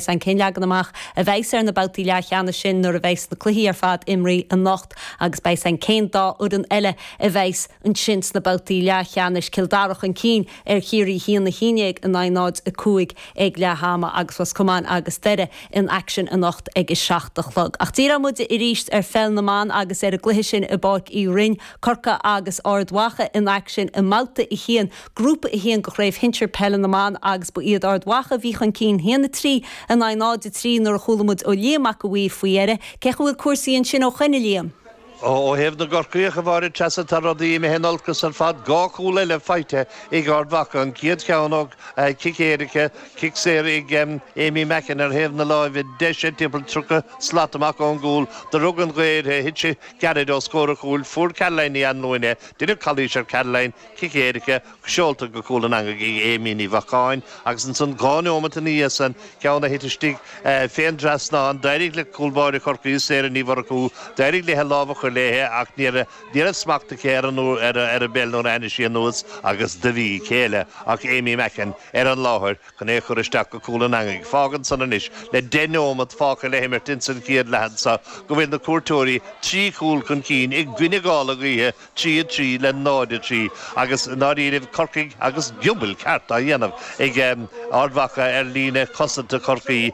Cén leagan amach a bheas ar na babhtaí leathcheannais sin nuair a bheas na cluichí ar fad imeartha anocht agus beidh an chéad dá fhoireann eile a bheas ansin sna babhtaí leathcheannais, Cill Dara chun cinn ar Chiarraí 1-11 in aghaidh 0-5 ag leath ama agus Ros Comáin agus Doire in aicsean anocht ag a seacht a chlog. Ach díreoidh muid arís ar pheil na mban agus ar an gcluiche sin i bPáirc Uí Rinn, Corcaigh agus Ard Mhacha in aicsean i mbabhta a haon. Grúpa 1 de Chraobh Shinsir Peile na mBan agus ba iad Ard Mhacha a bhí chun cinn 1 3 in aghaidh 0 3 nuair a chuala muid ó Liam Mac a' Mhaoir faoi dheireadh, cén chaoi a bhfuil cúrsaí ansin ó shoin a Liam? Ó thaobh na gCorcaíoch a Mháire Treasa tá rudaí imithe in olcas ar fad, dhá chúl eile faighte ag Ard Mhacha, an chéad cheann ó chic éirice, cic saor ag Aimee Mackin ar thaobh na láimhe deise timpeall 30 slat amach ón gcúl, do rug an ghaoth uirthi, thit sí gairid os comhair an chúil, fuair Caroline Ní Anluaine, deineadh calaois ar Caroline, Cic éirice, seolta go cúl an eangaigh ag Aimee Ní Mhaicín, agus ansan dhá neomat ina dhiaidh san, ceann a thit istigh fén dtrasnán, d'éirigh le cúl báire Chorcaí, Sarah Ní Mhurchú, d'éirigh léithe lámh a chur léithe ach ní raibh smacht aici ar an bpeil nuair a tháinig sí anuas agus do bhí céile ach Aimee Mackin ar an láthair chun é a chur isteach go cúl an eangaigh. Fágann san anois, le deich neomat fágtha le himirt insan chéad leath anso, go bhfuil na cuairteoirí trí chúl chun cinn i gcoinne gála gaoithe, trí a trí le náid a trí agus i ndáiríribh Corcaigh agus giobail ceart á dhéanamh ag Ard Mhacha ar líne cosanta Chorcaí.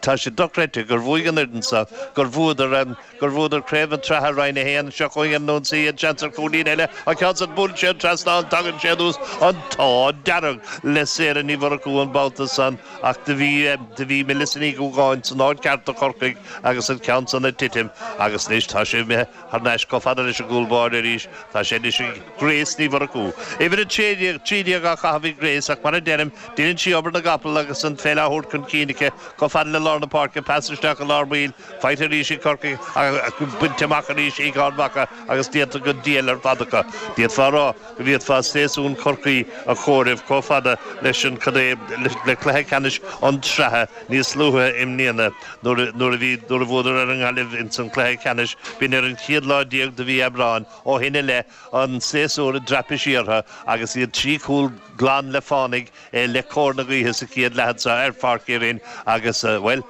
Tá sé dochreidte gur bhuaigh an fhoireann so, gur bhuadar, gur bhuadar Craobh an tSratha, Roinn 1, seo chuig an ionsaí, an seans ar chúilín eile, an ceann san, buaileann sé an trasnán, tagann sé anuas, an t-ádh dearg le Sarah Ní Mhurchú an babhta san ach do bhí, do bhí Melissa Ní Dhúgáin san áit cheart do Chorcaigh agus an ceann san ina titim agus anois tá sé imithe. Thar n-ais chomh fada leis an gcúl báire arís. Tá sé anois ag Grace Ní Mhurchú. Uimhir a trí déag á chaitheamh ag Grace ach mar a deirim, deineann sí obair na gcapall agus an pheil á thabhairt chun cinn aici chomh fada le lár na páirce, pas isteach i lár baill, faighte arís ag Corcaigh ach bainte amach arís ag Ard Mhacha agus déanta go diail ar fad acu, d'fhéadfá a rá. go bhféadfaí séasúr Chorcaí a chomhaireamh chomh fada leis an gcéad, le cluiche ceannais an tSratha níos luaithe i mbliana nuair a bhí nuair a bhuadar ar an nGaillimh ins an cluiche ceannais b'in ar an chéad lá déag de mhí Aibreáin ó shin i leith an séasúr i dtraipisí orthu agus iad trí chúl glan le fánaigh le cóir na gaoithe sa chéad leath anseo ar Pháirc Uí Rinn agus, bhuel,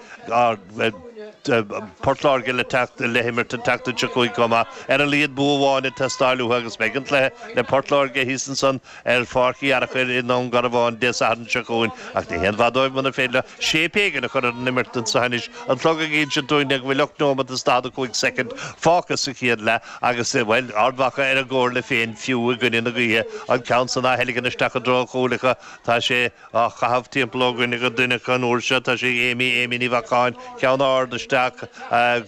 Port Láirge le teacht, le himirt an tseachtain seo chugainn chomh maith. Ar a laghad bua amháin ag teastáil uathu agus beidh an cluiche le Port Láirge thíos ansan ar Pháirc Uí Fhearachair i nDún Garbhán Dé Sathairn seo chugainn ach ní haon mhaith dóibh muna féidir leo Séip éigin a chur ar an imirt anseo anois, an clog ag inse dúinn go bhfuil ocht neomat is daichead a cúig soicind fágtha sa chéad leath agus, bhuel, Ard Mhacha ar a gcomhairle féin fiú i gcoinne na gaoithe, an ceann san á theilgean isteach i dtreo an chúil acu, tá sé á chaitheamh timpeall ó dhuine go duine acu an uair seo, tá sé ag Aimee, Aimee Ní Mhacáin, ceann ard isteach,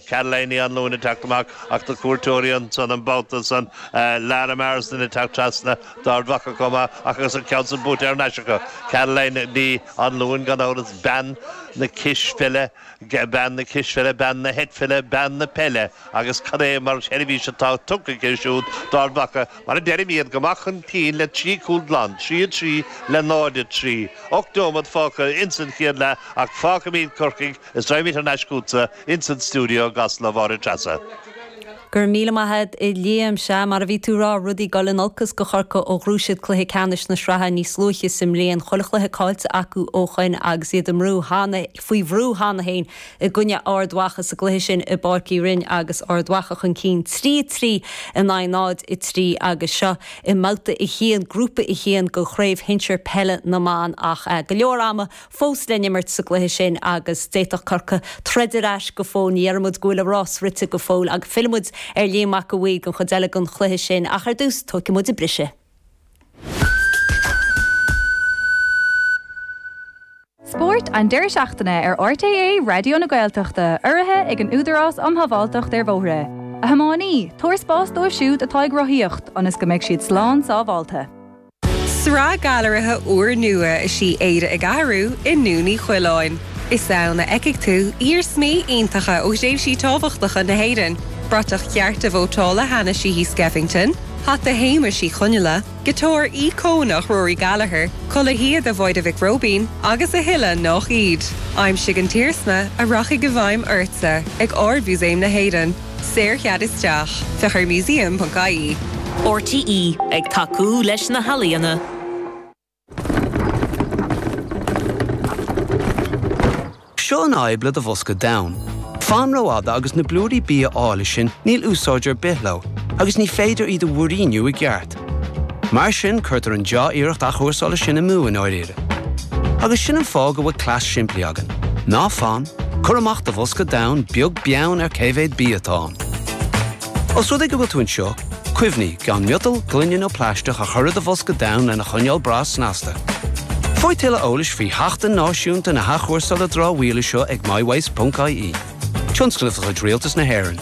Caroline Ní Anluain ag teacht amach ach na cuairteoirí ansan an babhta san, Lara Marsden ag teacht trasna d'Ard Mhacha chomh maith agus an ceann san buaite thar n-ais acu, Caroline Ní. Anluain, gan amhras, bean na cispheile, bean na cispheile, bean na heitpheile, bean na peile, agus cad é mar sheirbhís atá tugtha aici siúd d'Ard Mhacha, mar a deirim, iad go maith chun cinn le trí chúl glan, 3 3 le 0 3. Ocht neomat fágtha ins an chéad leath ach fágfaimíd Corcaigh is raghaimid thar n-ais chútsa ins an stiúideo i gCasla, a Mháire Treasa. Go raibh míle maith agat, a Liam. Sea, mar a bhí tú a rá, rudaí ag dul in olcas do Chorcaigh ó ghnóthaigh siad cluiche ceannais na sraithe níos luaithe sa mbliain, chuile chluiche caillte acu ó shoin agus iad faoi bhrú cheana féin i gcoinne Ard Mhacha sa gcluiche sin i bPáirc Uí Rinn agus Ard Mhacha chun cinn 3-3 in aghaidh 0-3 agus seo i mbabhta a haon, grúpa a haon de Chraobh Shinsir Peile na mBan ach go leor ama fós le n-imirt sa gcluiche sin agus d'fhéadfadh Corcaigh troid ar ais go fóill. Ní dheireann muid go bhfuil a rás rite go fóill agus fillfidh muid ar Liam Mac a' Mhaoir don chuid eile den chluiche sin ach ar dtús tóigfidh muid an briseadh. Spórt an deireadh seachtaine ar RTÉ Raidió na Gaeltachta, urraithe ag an Údarás um Shábháilteacht ar Bhóithre. A thiománaí, tabhair spás dóibh siúd atá ag rothaíocht ionas go mbeidh siad slán sábháilte. Sraith gailearaithe úrnua is í Éire ag Athrú i nDún Uí Choileáin. Is ann a fheicfidh tú iarsmaí iontacha ó thréimhsí tábhachtacha na hÉireann, bratach chearta vótála Hanna Sheehy Skeffington, hata Shéamuis Uí Chonghaile, giotár íocónach Rory Gallagher, culaith shíoda Mháire Mhic Róibín agus a thuilleadh nách iad. Aimsigh an t-iarsma a rachaidh i bhfeidhm ortsa ag Ard-Mhúsaem na hÉireann. Saorchead isteach, féach ar museum.ie. RTÉ ag tacú leis na healaíona. Seo an fhadhb le do bhosca donn. Fan rófhada agus na blúirí bia áille sin níl úsáid ar bith leo agus ní féidir iad a mhúiríniú i gceart. Mar sin, cuirtear an deá-iarracht athchúrsála sin amú i ndáiríre. Agus sin an fáth go bhfuil cleas simplí againn. Ná fan, cuir amach do bhosca donn, beag beann ar cé mhéad bia atá ann. Os rud é go bhfuil tú anseo, cuimhnigh gan miotal, gloine nó plaisteach a chur i do bhosca donn lena choinneáil breá snasta. Faigh tuilleadh eolais faoi Sheachtain Náisiúnta na hAthchúrsála Dramhaíola seo ag mywaste.ie, tionscnamh de chuid Rialtas na hÉireann.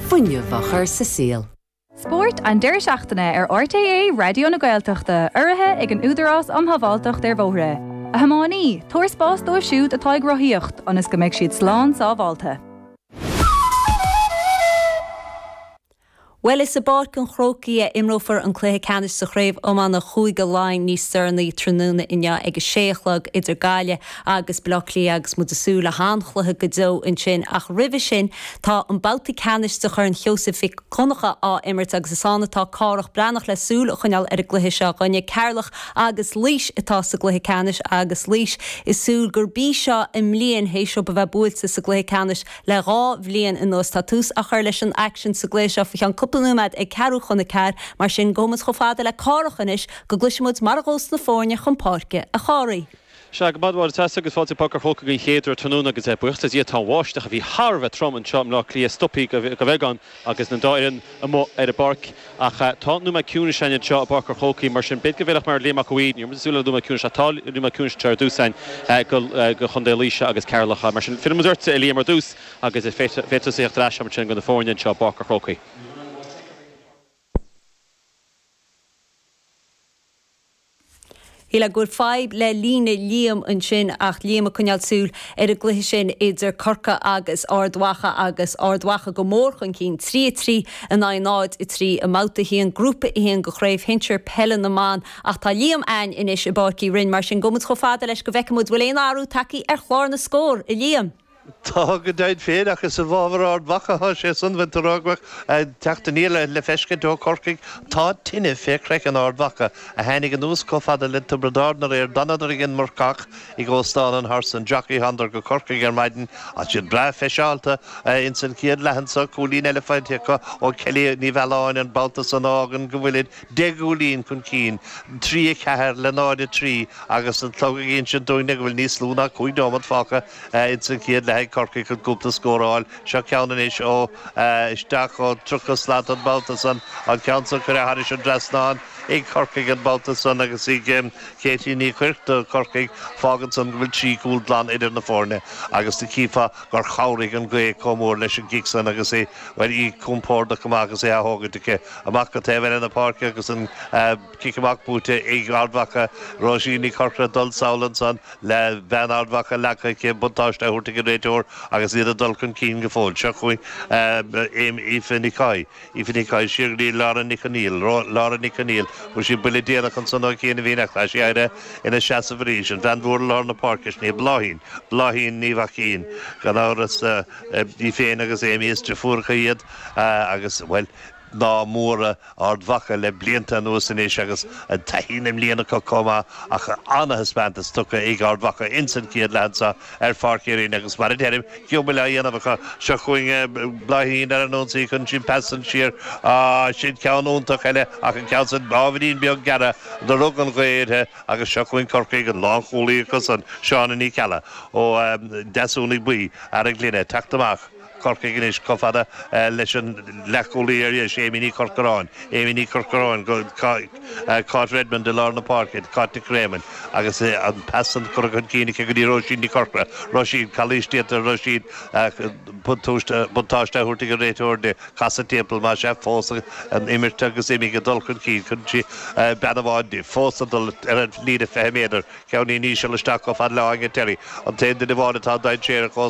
fuinneamh a chur sa saol. Spórt an deireadh seachtaine ar RTÉ Raidió na Gaeltachta, urraithe ag an Údarás Um Shábháilteacht ar Bhóithre. A thiománaí, tabhair spás dóibh siúd atá ag rothaíocht ionas go mbeidh siad slán sábháilte. Bhuel, is i bPáirc an Chrócaigh a imreofar an cluiche ceannais sa chraobh iomána Chúige Laighean níos deireanaí tráthnóna inniu ag a sé a chlog idir Gaillimh agus Baile Átha Cliath agus muid ag súil le han-chluiche go deo ansin ach roimhe sin tá an babhta ceannais de Chorn Sheosaimh Mhic Dhonncha á imirt agus is ann atá Cárthach Breathnach le súil a choinneáil ar an gcluiche seo againne. Ceatharlach agus Laois atá sa gcluiche ceannais agus Laois ag súil gurb í seo a mbliain th'éis dóibh a bheith buailte sa gcluiche ceannais le dhá bhliain anuas. Tá tús á chur leis an aicsean sa gcluiche seo faoi cheann cúpla nóiméad ag ceathrú chun a ceathair mar sin gabhaimid chomh fada le Cárthach anois go gcloisfimid mar a ghabhas na foirne chun páirce. A Chárthaigh. Sea, go raibh maith agat a Tess agus fáilte go Páirc an Chrócaigh don chéad uair tráthnóna agus eh buíochas le Dia tá an bháisteach a bhí thar a bheith trom anseo i mBleá Cliath stopaí go beagán agus an dá fhoireann amuigh ar an bpáirc ach eh tá nóiméad ciúnais ann anseo i bPáirc an Chrócaigh mar sin b'fhéidir go bhfeilfeadh mar Liam Mac a' Mhaoir níor mhiste súil nóiméad ciúnais ach tá nóiméad ciúnais anseo ar dtús ann eh go go Chontae Laoise agus Ceatharlach mar sin fillimid ort a Liam ar dtús agus eh féadfaidh tusa a thíocht ar ais a'ainn ansin do na foirne anseo i bPáirc an Chrócaigh. Shíl mé go bhfuil fadhb le líne Liam ansin ach Liam ag coinneáil súil ar an gcluiche sin idir Corca agus Ard Mhacha agus Ard Mhacha go mór chun cinn, 3 3 in aghaidh 0 3 i mBabhta 1, Grúpa 1 de Chraobh Shinsir Peile na mBan ach tá Liam a'ainn anois i bPáirc Uí Rinn mar sin gabhaimid chomh fada leis go bhfeicfimid bhfuil aon athrú tagthaí ar chlár na scór, a Liam. Tá go deimhin féin ach is i bhfábhar Ard Mhacha atá sé, gan puinn d'aon rian teacht aniar le feiscint ó Chorcaigh. Tá tine fé chraiceann Ard Mhacha, a tháinig anuas chomh fada le Tiobraid Árann aréir. D'fhanadar ag an marcach ag Óstán an Horse and Jockey, thánadar go Corcaigh ar maidin, atá siad breá friseáilte, ins an chéad leath anso. Cúilín eile faighte acu ó Kellie Ní Mhealláin an babhta san, a fhágann go bhfuilid deich gcúilín chun cinn, 3:04 le 0:03, agus an clog ag insint dúinn-ne go bhfuil níos lú ná cúig nóimeat fágtha. Ins an chéad leath ag Corcaigh chun cúpla scór a fháil. Seo ceann anois ó isteach ó 30 slat an babhta san. An ceann san cuireadh thairis an dtrasnán ag Corcaigh an babhta san agus ag Katie Ní Chuirc do Chorcaigh. Fágann san go bhfuil trí chúl glan idir na foirne agus do chífeá gur chabhraigh an gaoth comh mór leis an gcic san agus é, bhuel, í compordach go maith agus é á thógaint aici amach go taobh eile na páirce agus an Cic amach buaite ag Ard Mhacha, Róisín Ní Chorcra dul thar ansan le bean Ard Mhacha leagtha aici buntáiste á thabhairt ag an réiteoir agus iad ag dul chun cinn go fóill. Seo chugainn Aoife Ní Choy, Aoife Ní Choy, siar go dtí Laura Nic An Aoil, Laura Nic An Aoil fuair sí buille déanach ansan ó Chiana Mhín Eachla ach tá sí ina seasamh arís, an bhean mhór i lár na páirce is ea Bláithín, Bláithín Ní Mhaicín gan amhras, í féin agus Amy is deirfiúracha iad agus, bhuel, Mná móra Ard Mhacha le blianta anuas anois agus an taithí na mblian acu comh maith ach ana-thaispeantas tugtha ag Ard Mhacha ins an chéad leath anso ar Pháirc Uí Rinn agus mar a deirim giobail á dhéanamh acu seo chugainn Bláithín ar an ionsaí chun cinn pas san siar sin ceann iontach eile ach an ceann san ábhairín beag gearr do rug an ghaoth uirthi agus seo chugainn Corcaigh an lán chúlaí acu san Seána Ní Cheallaigh ó Dheasúnaigh Bhuí Araglainne teacht amach Corcaigh anois, chomh fada leis an leathchúlaí ar dheis, Amy Ní Chorcoráin, Amy Ní Chorcoráin, Cáit Redmond i lár na páirce, Cáit Nic Réamoinn, agus an pas san curtha chun cinn aici go dtí Róisín Ní Chorcra, Róisín, calaois déanta ar Róisín ach buntáiste á thabhairt ag an réiteoir di, casadh timpeall, más ea, fós an imirt agus iad ag dul chun cinn, chun cinn, bean amháin di, fós ag dul ar an líne 20 méadar, ceann íseal isteach chomh fada le Áine Terry, an t-aon duine amháin atá dainséarach ó